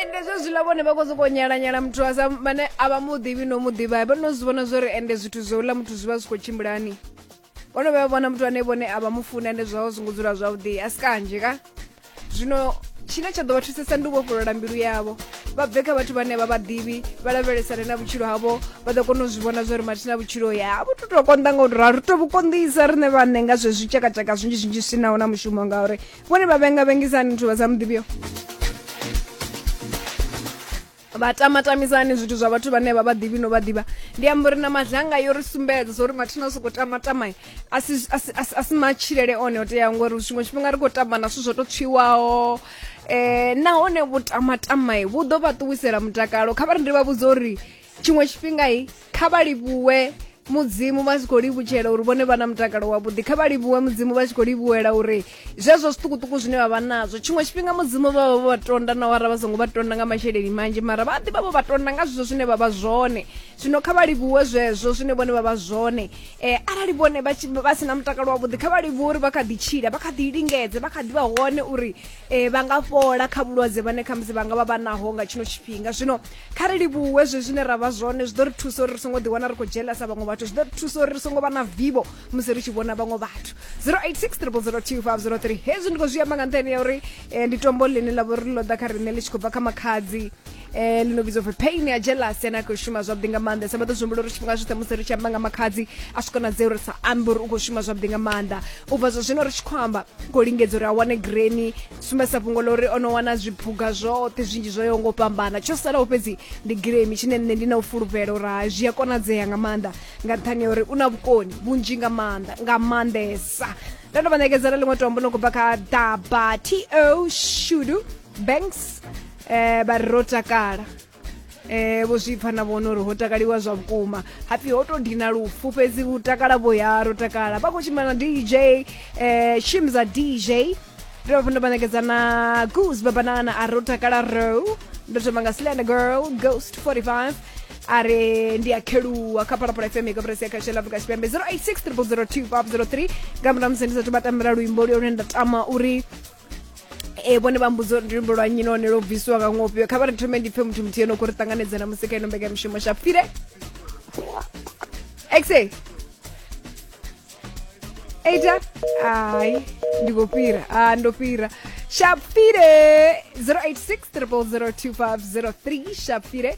ende zwezwiḽa vhone vha khou sokou nyalanyala muthu a sa vhane a vha mu ḓivhi no mu ḓivha vho no zwi vhona zwo ri ende zwithu zwo uḽa muthu zwi vha zwi khou tshimbilani vho no vhuya vhona muthu ane vhone a vha mu funa ende zwaho zwi ngo dzula zwavhuḓi a si kanzhi ka zwino tshine tsha ḓo vha thusesa ndi u vhofholola mbilu yavho vha bve kha vhathu vhane vha vhaḓivhi vha lavhelesane na vhutshilo havho vha ḓo kona u zwi vhona zwa uri mathi na vhutshilo ya vhu to tou konḓa nga u tou ralo ri to vhu konḓisa riṋe vhaṋe nga zwezwi tshakatshaka zwinzhi zwinzhi zwi si naho na mushumo ngauri vhone vha vhenga vhengisani zwithu vha sa muḓivhiyo vha tamatamisani zwithu zwa vhathu vhane vha vha ḓivhi no vha ḓivha ndi amba uri na madlanga yo ri sumbedza zwa uri mathina o sokou tamatama a si- a si- a si- a si matshilele one o teaho ngori tshiṅwe tshifhinga ri khou tamba na zwithu zwo tou tswiwaho um nahone vhutamatama vhu ḓo vha ṱuwisela mutakalo kha vha ri ndi vha vhudza uri tshiṅwe tshifhinga i kha vha livhuwe mudzimu vha tshi khou livhutshela uri vhone vha na mutakalo wavhuḓi kha vha livhuwe mudzimu vha tshi khou livhuwela uri zwezwo zwiṱukuṱuku zwine vha vha nazwo tshiṅwe tshifhinga mudzimu vha vha vho vha tonda na wara vha songo vha tonda nga masheleni manzhi mara vha ḓi vha vho vha tonda nga zwezwo zwine vha vha zwone zwino kha vha livhuwe zwezwo zwine vhone vha vha zwone um arali vhone vha si na mutakalo wavhuḓi kha vha livhuwe uri vha kha ḓi tshila vha kha ḓi lingedze vha kha ḓi vha hone uri e, vha nga fhola kha vhulwadze vhane khamusi vha nga vha vha naho nga tshino tshifhinga zwino kha ri livhuwe zwe zwine ra vha zwone zwi ḓo ri thusa uri ri songo ḓiwana ri khou dzhelesa vhaṅwe vhathu zwi ḓo ri thusa uri ri songo vha na vivo musi ri tshi vhona vhaṅwe vhathu 0860022503 hezwi ndi khou zwi amba nga nṱhani ya uri eh, ndi tombo ḽine ḽa vho ri ḽo ḓa kha riṋe ḽi tshi khou bva kha makhadzi eh lino vhidzo pfi pain ya jealous ene a khou shuma zwavhuḓi nga maanḓa sa vha ḓo zwihumbula uri tshifhinga tshoṱhe musi ri tshi amba nga makhadzi a swi konadzea uri sa ambe uri u khou shuma zwavhuḓi nga maanḓa u bva zwa zwino ri tshi khou amba khou lingedza uri a wane greni sumbedzisa fhungo ḽa uri o no wana zwiphuga zwoṱhe zwinzhi zwo yaho ngo fhambana tsho salaho fhedzi ndi gremi tshine nṋe ndi na u fulufhela uri hai zwi a konadzea nga maanḓa nga nṱhani ya uri u na vhukoni vhunzhi nga maanḓa nga maanḓesa ndo no vha ṋekedza na ḽiṅwe tombo no khou bva kha daba to shudu banks eh vha ri ro takala eh vho zwi pfa na vhona uri ho takaliwa zwa vhukuma hapfi ho to dina lufu fhedzi u takala vho ya ro takala vha khou tshimbila na dj eh shimza dj ri vha funa vhanekedza na goose babanana a ro takala ro ndo thoma nga slender girl ghost 45 a re ndi a kheluwa kha phalaphala fm ka presi ya kha shela afrika tshipembe 086 302 503 nga murahu musi ndi sathu vha tambela luimbo luyone nda tama uri e vhone vha mbudza uri luimbo lwa nnyi nahone lwo bvisiwa nga ṅwofhio kha vha ri thome ndi pfe muthu muthihi no kho ri ṱanganedza na musi kha ino mbekamishumo shapire exe eita ai ndi khou fhira a ndo fhira shapire 086 0002503 shapire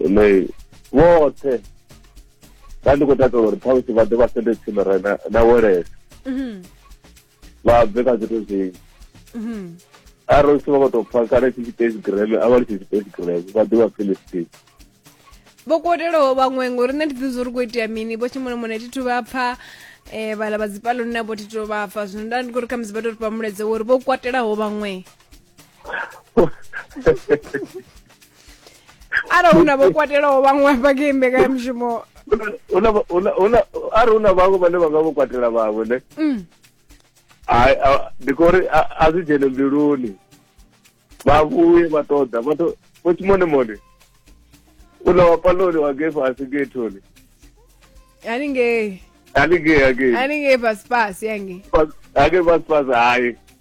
ine vhoṱhe nda ndi khou takalela uri ṱhamusi vha ḓe vha sende tsini re na welesa mhm. vha bve kha zwithu zwinzhi mhm. arali u si vha vha tou pfa kale tshi tshipesi greme a vha li tshi tshipesi greme vha ḓe vha philistini vho kotelaho vhaṅwe ngori nṋe ndi ḓi zwo ri khou itea mini vho tshimulomone thi thu vha pfa um eh, vhala vha dzipaloni navho thi thu vha pfa zwino nda ndi khou ri kha musi vha tou ri fha muledzeo uri vho kwatelaho vhaṅwe arali hu na vho kwatelaho vhaṅwe vha khe mbekanyamushumo arali hu na vhaṅwe vhane vha nga vho kwatela vhaṅwe ne mm. ndi kho uri a zwi dzhene mbiluni vha vhuye vha ṱoḓa vha to vho tshimone mone una wa paloni wa ge fhasi ge thoni haningei haningei haningei haningei fhasi fhasi yange haningei fhasi fhasi hayi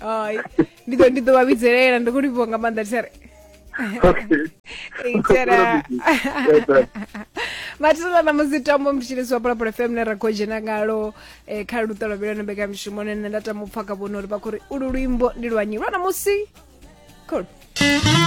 Ai, ndi ḓo ndi ḓo vha vhidzelela ndi khou livhiwa nga maanḓa thitshere okay itshera mathisela na musi tambo mthitshilisi wa pulapula fm ne ra khou dzhena ngalo eh, kha luṱa lwa vhilano mbekamishumo ne nṋe nda tama u pfha kha vhona uri vha khou ri ulu luimbo ndi lwanyi lwa na musi cool